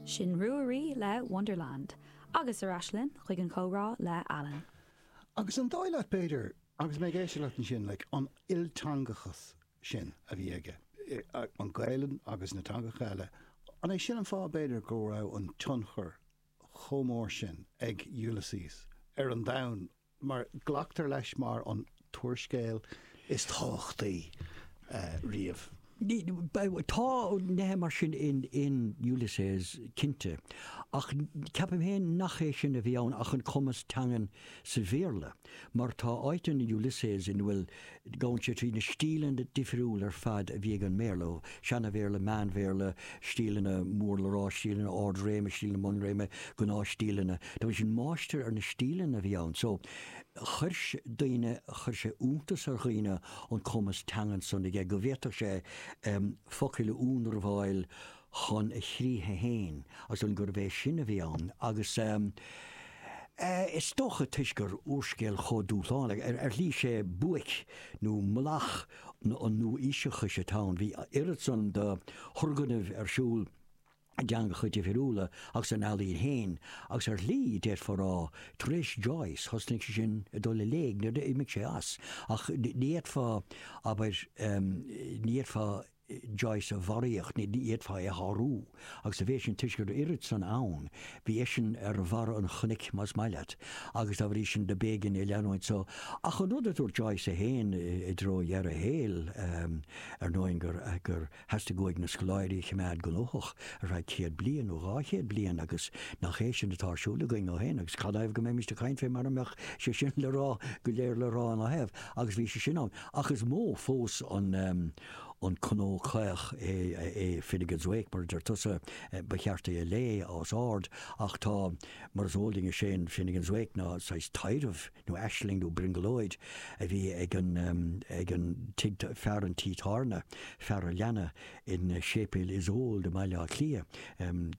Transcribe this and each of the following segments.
Sin Ruaidhrí le Wonderland. Agus ar ais linn chuig an chomhrá le Alan. Agus an dóigh leat, b'fhéidir, agus mé ag éisteacht leat ansin, like, an ilteangachas sin a bhí aige, an Ghaelainn agus na teangacha eile, an é sin an fáth, b'fhéidir, go raibh an tionchar chomh mór sin ag Ulysses ar an domhan mar glactar leis mar an t-úrscéal is tábhachtaí riamh. Tá nithe mar sin in Ulysses, cinnte, ach ceapaim féin nach é sin a bhí ann ach an cumas teangan sa Bhéarla, mar tá áit in Ulysses ina bhfuil Gabhann sé trí na stíleanna difriúla ar fad a bhí ag an mBéarla, ó Sheana-Bhéarla, Meán-Bhéarla, stíleanna mór le rá, stíleanna ard-réime, stíleanna bun-réime, gnáthstíleanna. Tá a fhios agat, máistir ar na stíleanna a bhí ann. So, chuir daoine, chuir sé iontas ar dhaoine an cumas teangan san aige go bhféadfadh sé focail a ionramháil, chun a chríche féin, agus dom gurbh é sin a bhí ann, agus is dócha, toisc gur úrscéal chomh dúshlánach, ar shlí, is é buaic nó mullach an nua-aoiseachais atá ann. Bhí oiread san de thurgnamh ar siúl i dteangacha difriúla agus san ealaín féin, agus ar shlí, d'fhéadfá a rá, tar éis Joyce, thosnaigh sé sin ag dul i léig, nuair a d'imigh sé as, ach ní fhéadfá, abair, ní fhéadfá Joyce a mharú, ní fhéadfá é a shárú, agus bhí sé sin toisc go raibh oiread san ann, bhí eisean ar bharra an chnoic, más maith leat, agus dá bhrí sin do b'éigean é leanúint. So, ach an rud a dúirt Joyce é féin i dtreo dheireadh a shaoil, ar ndóin, gur, gur theastaigh uaidh na scoláirí a choimeád gnóthach ar feadh céad bliain nó dhá chéad bliain agus nach é sin atá ar siúl againn ó shin agus cad ina thaobh go mbeimíst ag caint fé mara mbeadh sé sin le rá go léir le rá ina thaobh agus bhí sé sin ann ach is mó fós an an cnó caoch é Finnegans Wake mar a deir tusa, ba cheart é a léamh os ard, ach tá, mar is eol dúinn, is é an Finnegans Wake ná saghas taidhreamh nó aisling nó brionglóid a bhí ag an ag an fear an tí tábhairne, fear an leanna i Séipéal Iosóid i mBaile Átha Cliath.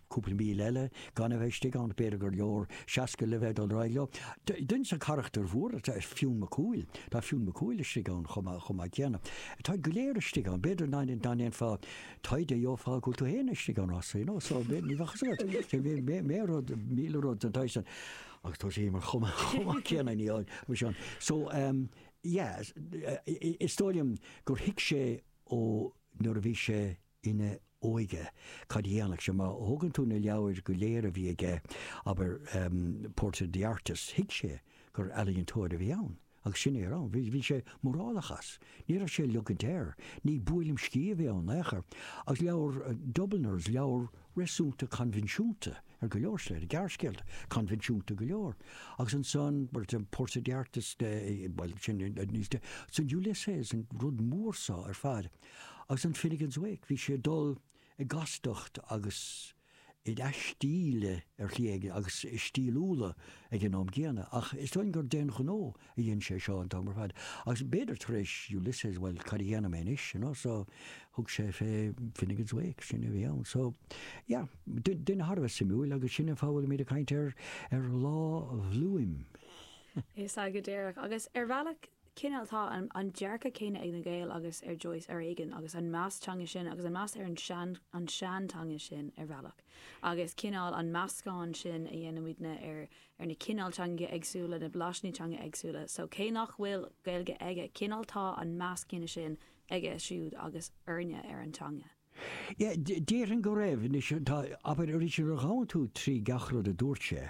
cúpla míle eile gan a bheith istigh ann, b'fhéidir gur leor seasca le bheith ag dul ar aghaidh leo. Duine de charachtair mhóra ná Fionn Mac Cumhaill. Tá Fionn Mac Cumhaill istigh ann chomh maith céanna. Táid go léir istigh ann. B'fhéidir dá ndéanfá taighde gheofá go bhfuil tú féin istigh ann chomh maith, you know, so ní bheadh a fhios agat. Míle rud, míle rud den tsaghas sin agus tá sé mar chomh maith céanna ní ann mar sin. So, em, yeah, is dóigh liom gur thuig sé ó nuair a bhí sé, ina óige. Cad a dhéanfadh sé? Má thógann tú na leabhair go léir a bhí aige, abair Portrait of the Artist, thuig sé gur ealaíontóir a bhí ann agus sin é a raibh ann. Bhí sé mórálach as. Ní raibh sé ag leogaint air. Ní buaileam sciath a bhí ann in aon chor. Agus leabhar Dubliners, leabhar réasúnta coinbhinsiúnta ar go leor slite, gearrscéalta coinbhinsiúnta go leor. Agus ansan, Portrait of the Artist, bhuel, sin níos, ansan Ulysses, an rud mór so ar fad. Agus an Finnegans Wake, bhí sé ag dul i gcastacht agus in aistíl ar shlí éigin, agus i stíliúla ag an am gcéanna. Ach is dóigh gur d'aon ghnó a dhein sé seo an t-am ar fad. Agus b'fhéidir tar éis Ulysses, bhuel, cad a dhéanfaidh mé anois, you know? So, thug sé fé Finnegans Wake, sin a bhí ann. So, yeah, duine thar a bheith suimiúil, agus sin an fáth a bhfuilimid ag caint ar Lá Bhloom. Is ea, go díreach. Agus ar bhealach, cineál tá an dearcadh céanna ag na Gaeil agus ar Joyce ar éigin agus an meas teanga sin agus an meas ar an seanteanga sin ar bhealach agus cineál an meascán sin a dhéanann muidne ar na cineál teangacha éagsúla na blaisíní teanga éagsúla so cé nach bhfuil Gaeilge aige cineál tá an meas céanna sin aige siúd agus orainne ar an teanga. Déarfainn go raibh. Anois, tá, abair, arís, nuair a ghabhann tú trí gach rud a dúirt sé,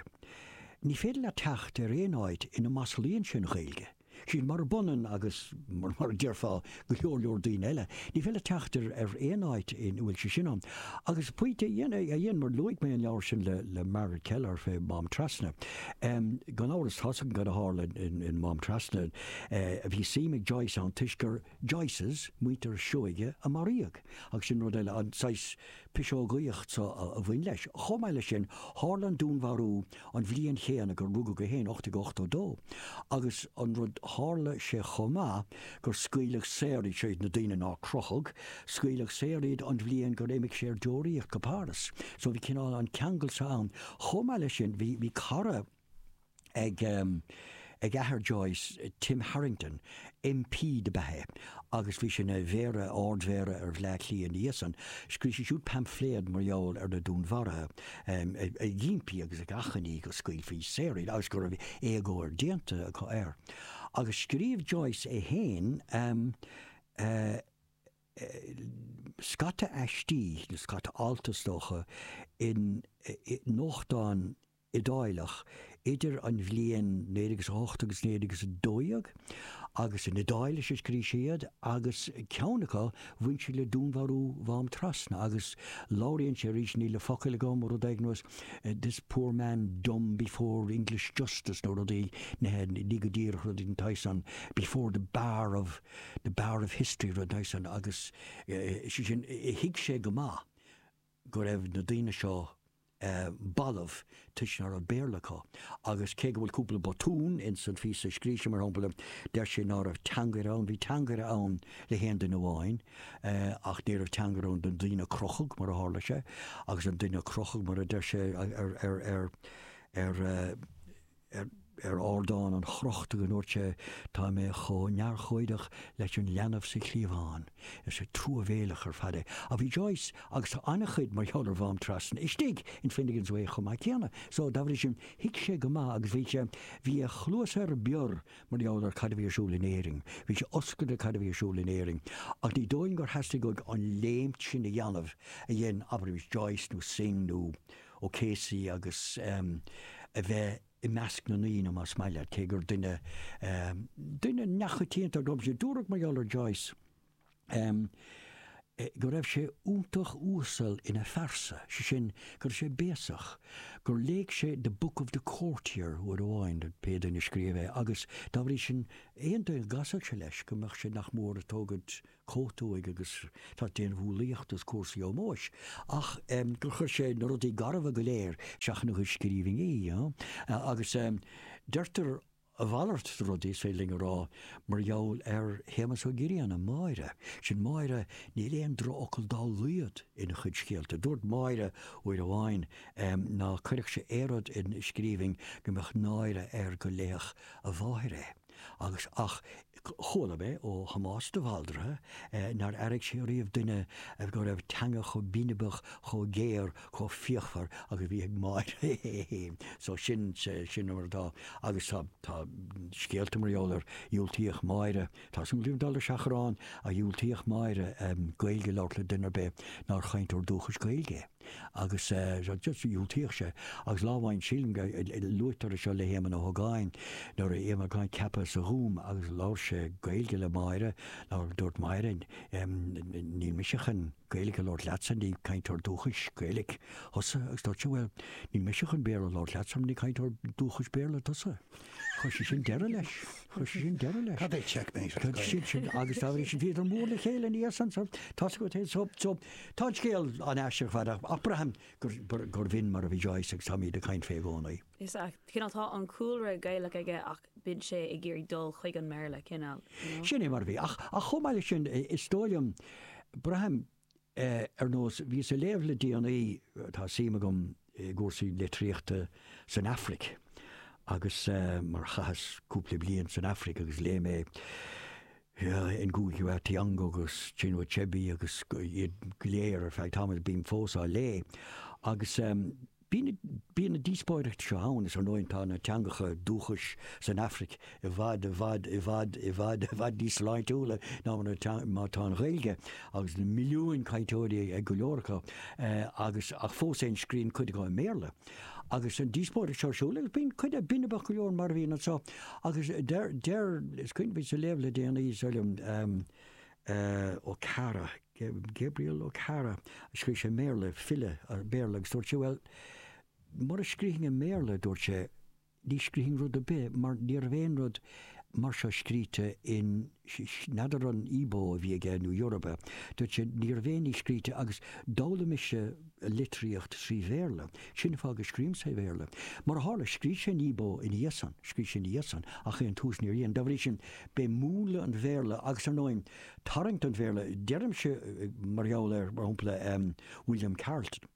ní féidir leat teacht ar aon áit ina maslaíonn sé an Ghaeilge. Sin murab ionann agus, mar a déarfá, go leor leor daoine eile. Ní féidir leat teacht ar aon áit ina bhfuil sé sin ann. Agus pointe a dhein, mar luaigh mé an leabhar sin le Margaret Kelleher, fé Mhám Trasna. Gan amhras, tá's againn cad a tharla in Mám Trasna. Bhí suim ag Joyce ann toisc gur. Joyces, muintir Seoighe a maraíodh, agus sin rud eile, an saghas piseogaíocht so a bhain leis. Chomh maith leis sin, tharla an dúnmharú an bhliain chéanna gur rugadh é féin, 1882, agus an rud, tharla sé chomh maith gur scaoileadh saor iad, seo iad na daoine nár crochadh, scaoileadh saor iad an bhliain gur imigh sé ar deoraíocht go Páras. So bhí cineál an ceangal so ann. Chomh maith leis sin, bhí cara. ag athair Joyce, Tim Harrington, MP do b'ea é agus bhí sé ina mhéara, ardmhéara, ar Bhleá Cliath ina dhiaidh san. Scríobh sé siúd paimfléad mar gheall ar na dúnmharuithe, ag impí agus ag achainí go scaoilfí saor iad agus go raibh éagóir déanta acu air. Agus scríobh Joyce é féin scata aistí, nó scata alt is dócha, in nuachtán, Iodáileach idir an bhliain 1908 agus 1912, agus in Iodáilis a scrígh sé iad, agus ceann acu, bhain sí le dúnmharú Mhám Trasna, agus labhraíonn sé arís, níl na focail agam, rud éigin ar nós this poor man dumb before English justice nó rudaí, ní hea, ní go díreach rud éigin den tsaghas san, before the bar of, the bar of history, rud den tsaghas san, agus sé sin, thuig sé go maith. go raibh na daoine seo balbh toisc ná raibh Béarla acu, agus cé go bhfuil cúpla botún ins an phíosa a scrígh sé, mar shampla, deir sé ná raibh teangaire ann, bhí teangaire ann le haon duine amháin, ach ní raibh teangaire ann don duine a crochadh, mar a tharla sé, agus an duine a crochadh, mar a deir sé ar. ar ar ardán an chrochta go ndúirt sé, 'Tá mé chomh neamhurchóideach leis an leanbh sa chliabhán'. Is scéal truamhéileach ar fad é. Ach bhí Joyce agus tá an-chuid mar gheall ar Mhám Trasna istigh in Finnegans Wake chomh maith céanna, so dá bhrí sin thuig sé go maith agus bhí sé, bhí a chluasa ar bior mar gheall ar cad a bhí ar siúl in Éirinn, bhí sé oscailte cad a bhí ar siúl in Éirinn. Ach ní dóigh liom gur theastaigh uaidh an léimt sin a dhéanamh a dhein, abraimis, Joyce nó Synge nó. O'Casey agus a bheith i measc na ndaoine, más maith leat, cé gur duine duine neamhchoitianta a raibh sé. Dúradh mar gheall ar Joyce go raibh sé iontach uasal ina phearsa, sé sin, go raibh sé béasach, gur léigh sé The Book of the Courtier uair amháin, pé duine a scríobh é, agus dá bhrí sin aon duine a gcasfadh sé leis go mbeadh sé nach mór ag tógaint chóta uaidh agus ag déanamh umhlaíocht is cúrsaí ómóis ach gur chuir sé na rudaí garbha go léir isteach ina chuid scríbhinní agus deirtear a mhalairt de rud, is féidir linn a rá, mar gheall ar Shéamus Ó Grianna, 'Máire'. Sin Máire, níl aon drochfhocal dá laghad ina chuid scéalta. Dúirt Máire uair amháin ná cuirfeadh sé aon rud in scríbhinn go mbeadh náire air go léifeadh a mháthair é. agus ach chuala mé ó Thomás de Bhaldraithe nár airigh sé riamh duine go raibh teanga chomh binibeach, chomh géar, chomh fíochmhar agus a bhí ag Máire é féin. So sin, sin an rud atá. Agus tá, tá scéalta mar gheall ar, dhiúltaíodh Máire, tá súil agam dul le seachrán, ach dhiúltaíodh Máire Gaeilge a labhairt le duine ar bith nár chainteoir dúchais Gaeilge é. agus dhiúltaíodh sé, agus lá amháin sílim go luaitear é seo le hÉamonn Ó hÓgáin, nuair a bhí Éamonn Ó hÓgáin ceaptha sa Ghúm agus labhair sé Gaeilge le Máire, labhair, dúirt Máire, níl mise chun Gaeilge a labhairt leatsa, ní cainteoir dúchais Gaeilge thusa, agus dúirt sé, bhuel, níl mise chun Béarla a labhairt leatsa mar ní cainteoir dúchais Béarla tusa. Chuir sé sin deireadh leis, chuir sé sin deireadh leis. Cad é checkmate? Agus tar éis sin, bhíodar mór le chéile ina dhiaidh san, tá go so, so, Tá an scéal an-aisteach ar fad, ach braithim gurbh in mar a bhí Joyce agus táimid ag caint fé i gcónaí. Is ea, cineál, tá an cúlra Gaelach aige ach bíonn sé ag iarraidh dul chuig an mBéarla, cineál, you know? Sin é mar a bhí. Ach chomh maith leis sin, is dóigh liom, braithim, ar nós, bhíos ag léamh le déanaí, tá suim agam, i gcúrsaí litríochta san Afraic agus mar chaitheas cúpla bliain san Afraic agus léigh mé Ngugi wa Thiong'o agus Chinua Achebe agus iad go léir ar feadh tamaill, bím fós á léigh agus bíonn na díospóireachtaí seo ann. Is ar ndóigh tá na teangacha dúchais san Afraic i bhfad, i bhfad, i bhfad, i bhfad, i bhfad níos sláintiúla ná mar atá an Ghaeilge, agus na milliúin cainteoirí ag go leor acu, agus, ach fós féin scríonn cuid acu i mBéarla. Agus an díospóireacht seo ar siúl, agus bíonn cuid acu binibeach go leor mar a bhíonn anseo, agus deir, deir, is cuimhin liom bhíos ag léamh le déanaí, is dóigh liom, Okara, Gabriel Okara, scríobh sé i mBéarla, file Béarla, agus dúirt sé, bhuel, mura scrífinn i mBéarla, dúirt sé, Ní scrífinn rud ar bith, mar ní raibh aon rud mar seo scríte in, n'fheadar an Igbo a bhí aige nó Yoruba, dúirt sé, ní raibh aon ní scríte agus d'fhoghlaim mise litríocht trí Bhéarla, sin an fáth go scríobhaim sa Bhéarla. Mar a tharla, scrígh sé in Igbo ina dhiaidh san, scrígh sé ina dhiaidh san ach ar dtús níor dhein. Dá bhrí sin, b'é múnla an Bhéarla agus, ar ndóigh, tarraingt an Bhéarla, deirimse mar gheall ar, mar shampla, William Carleton.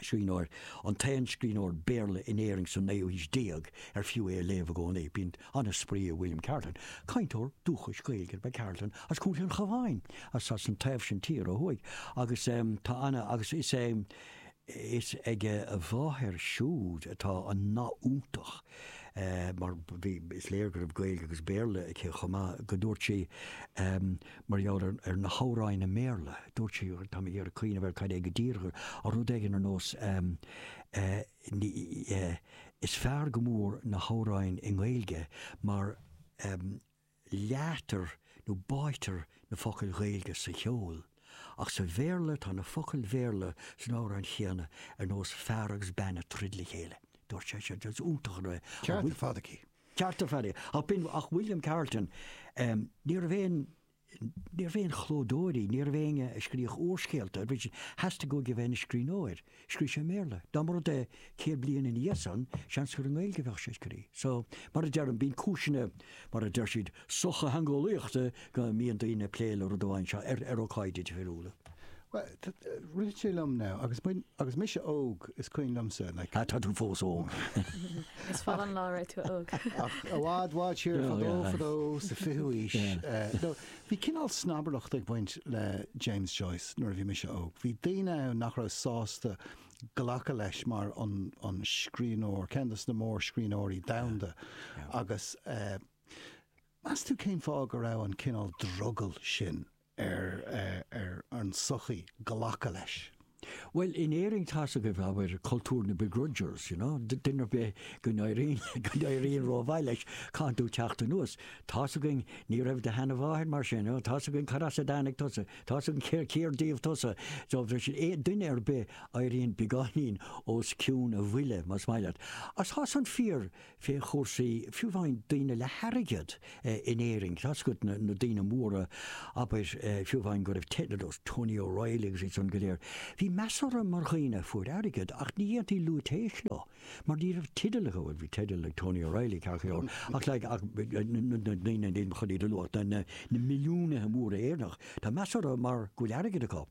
scríbhneoir, an t-aon scríbhneoir Béarla in Éirinn sa naoú haois déag ar fiú é a léamh i gcónaí. Bíonn an-spraoi i William Carleton, cainteoir dúchais Gaeilge ab ea Carleton as Contae an Chabháin, as as an taobh sin tíre ó thuaidh, agus tá ana agus is é is ag a mháthair siúd atá an nath iontach mar bhí is léir go raibh Gaeilge agus Béarla aici chomh maith go dúirt sí, Mar gheall ar na hamhráin i mBéarla, dúirt sí, tá mé ag iarraidh cuimhneamh ar cad é go díreach, ar rud éigin ar nós ehm, eh, is fearr go mór na hamhráin i nGaeilge mar, ehm, leáitear nó báitear na focail Ghaeilge sa cheol. Ach sa Bhéarla, tá na focail Bhéarla san amhrán chéanna ar nós 'fear agus bean ag troid le chéile'. Dúirt sí, 'is iontach an rud é, an-cheart ar fad aici. Ceart ar fad. Ach b'in é William Carleton, ní raibh aon, ní raibh aon chlódóirí, ní raibh éinne ag scríobh úrscéalta, theastaigh uaidh a bheith ina scríbhneoir, scríobh sé i mBéarla. Dá mba rud é céad bliain ina dhiaidh san, seans gur i nGaeilge a bheadh sé ag scríobh. So, mar a deirim, bíonn cúiseanna, mar a deir siad, sochtheangeolaíochta go mbíonn daoine ag plé le rud amháin seo ar ócáidí difriúla. Bhuel, rith sé liom now, agus agus mise óg, is cuimhin liomsa like. Ah, tá tú fós óg. Is fada an lá raibh tú óg. Ach i bhfad bhfad siar fadó fadó sa fiú ís. Bhí cineál snobaireacht ag baint le James Joyce nuair a bhí mise óg. Bhí daoine ann nach raibh sásta glacadh leis mar an scríbhneoir, ceann de na mórscríbhneoirí domhanda agus eh, Meas tú cén fáth go raibh an cineál drogaill sin ar an tsochaí glacadh leis? Bhuel, in Éirinn tá's agaibh, abair, cultúr na begrudgers, you know, duine ar bith go n-éiríonn rómhaith leis, caithfidh tú teacht anuas, tá's againn ní raibh do sheanamháthair mar sin, tá's againn cad as a dtáinig tusa, tá's againn cér díobh tusa, so duine ar bith a éiríonn beagáinín os cionn a bhuille, más maith leat. Ach tá san fíor fé chúrsaí, fiú amháin daoine le hairgead, in Éirinn. Tá's agat na daoine móra, abair, fiú amháin go raibh teidil ó Tony O'Reilly agus iad san go léir. Bhí meas orthu mar dhaoine a fuair airgead, ach ní dhéantaí lúitéis leo, mar ní raibh teideal acu, bhuel, bhí teideal ag Tony O'Reilly, ceart go leor, ach like, ach na daoine, nílim chun iad a luadh, na, na, na milliúnaithe móra Éireannach, tá meas orthu mar go bhfuil airgead acu.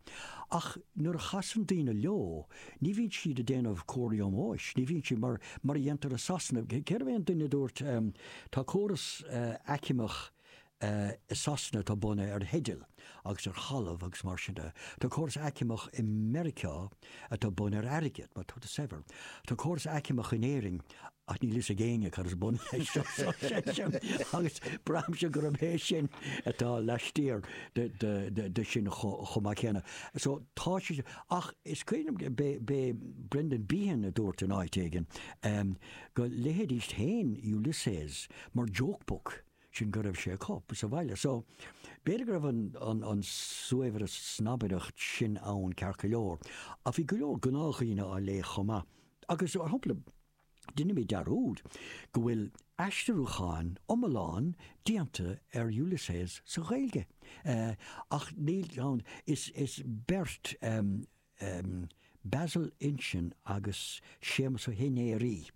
Ach nuair a chasann daoine leo. Ní bhíonn siad ag déanamh comharthaí ómóis, ní bhíonn siad mar a dhéantar i Sasana. Cérbh é an duine a dúirt, Tá córas aicmeach i Sasana atá bunaithe ar theidil agus ar thalamh agus mar sin de. Tá córas aicmeach i Meiriceá atá bunaithe ar airgead, má tá tú saibhir. Tá córas aicmeach in Éirinn Ach níl fhios ag éinne cad is bun leis sin, so agus braithimse gurb é sin atá laistiar de sin chomh maith céanna. So tá sé sin. Ach is cuimhin liom, b'é Brendan Behan a dúirt in áit éigin, go léifidís féin Ulysses mar joke book sin go raibh sé acu sa bhaile. So b'fhéidir go raibh an saghas snobaireacht sin ann ceart go leor. Ach bhí go leor gnáthdhaoine á léamh chomh maith Agus, mar shampla, deinimid dearúd go bhfuil aistriúchán iomlán déanta ar Ulysses sa Ghaeilge, ach níl ann is beirt, Breasal Uilsean agus Séamas Ó hInnéirghe,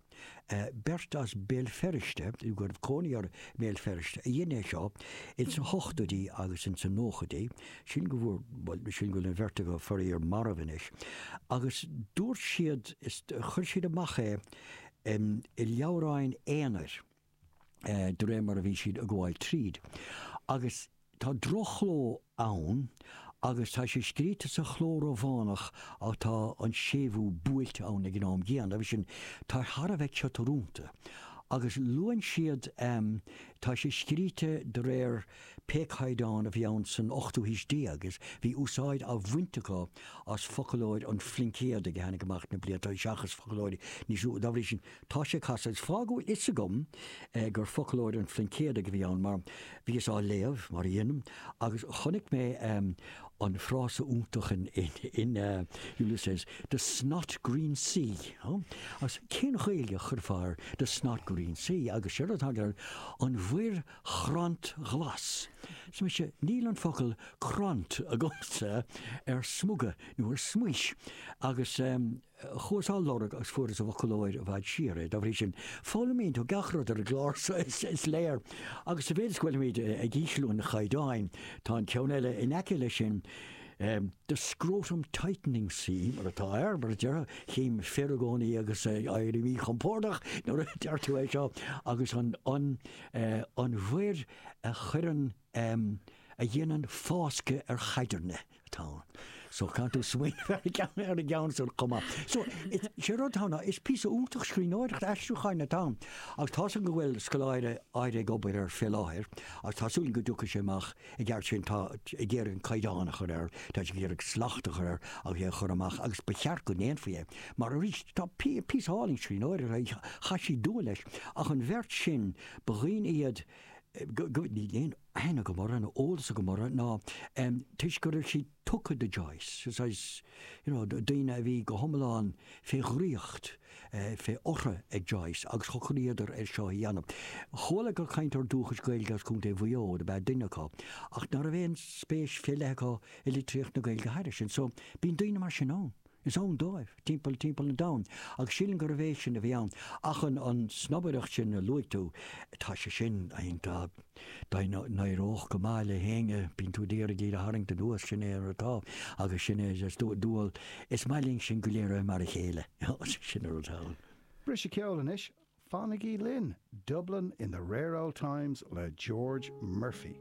beirt as Béal Feirste, nó go raibh cónaí orthu i mBéal Feirste, a dhein é seo ins na hochtóidí agus ins na nóchaidí. sin go bhfuair, bhuel, sin go bhfuil an bheirt acu, faraor, marbh anois. Agus dúirt siad, chuir siad amach é i leabhráin aonair de réir mar a bhí siad a' gabháil tríd. Agus tá droch-chló ann agus tá sé scríte sa chló Rómhánach ach tá an séimhiú buailte ann ag an am gcéanna, dá bhrí sin, tá sé thar a bheith ciotúrúnta. Agus luann siad, tá sé scríte de réir, Pé caighdeán a bhí ann san ochtú haois déag, is bhí úsáid á bhaint acu as foclóir an Phluincéadaigh a tháinig amach na blianta seo seachas foclóir níos nua. Dá bhrí sin, tá sé casta. Is fáth go bhfuil a fhios agam gur foclóir an Phluincéadaigh a bhí ann mar bhíos á léamh, mar a dhéanaim, agus chonaic mé an frása iontach in Ulysses, 'the snot green sea'. Agus cén Ghaeilge a chuirfeá ar 'the snot green sea'? Agus seo rud atá ann, an mhuir chrant ghlas. Arsa mise, Níl an focal crant agamsa ar smuga nó ar smaois agus chuas á lorg agus fuaireas i bhfoclóir i bhfad siar é. Dá bhrí sin, foghlaimíonn tú gach rud ar an gclár so, is léir. Agus sa mhéid is go bhfuilimid ag ísliú an chaighdeáin, tá an ceann eile in aice leis sin, The Scrotum Tightening Sea, mar atá air, mar a déarfá, chím na fir i gcónaí agus éiríonn siad míchompordach nuair a deirtear é seo, agus an. an mhuir a chuireann, a dhéanann fáscadh ar chaidirne atá ann. So caithfidh tú smaoineamh ar an gceann, ar an gceann san chomh maith. So is, sé rud atá ann ná, is píosa iontach scríbhneoireachta aistriúcháin atá ann. Agus tá súil agam go bhfuil scoláire áirithe ag obair air fé láthair agus tá súil agam go dtiocfaidh sé amach I gceart sin, tá sé ag iarraidh an Caighdeán a chur air, tá sé ag iarraidh slacht a chur air agus é a chur amach, agus ba cheart go ndéanfaí é, mar arís, tá píosa álainn scríbhneoireachta, chaith siad dua leis, ach an bheirt sin, ba dhaoine iad go, níl aon aithne agam orthu, nó eolas agam orthu, ach toisc go raibh siad. tugtha do Joyce, is é sin, daoine a bhí go hiomlán fé dhraíocht, fé ortha ag Joyce agus shocraíodar ar seo a dhéanamh. Chuala gur cainteoir dúchais Gaeilge as Co. Mhaigh Eo ab ea duine acu, ach ná raibh aon spéis fé leith acu i litríocht na Gaeilge thairis sin. So, bíonn daoine mar sin ann. Is ann dóibh, timpeall timpeall an domhain, agus sílim gurbh é sin a bhí ann. Ach an an snobaireacht sin a luaigh tú, tá sé sin ionainn, dá n-éireodh go maith le héinne, bíonn tú ag iarraidh iad a tharraingt anuas, sin é mar atá, agus sin é is dual, is maith linn sin go léir a bheith mar a chéile, sin an rud atá ann. Briseadh ceoil anois, fanaigí linn, Dublin in the Rare Old Times le George Murphy.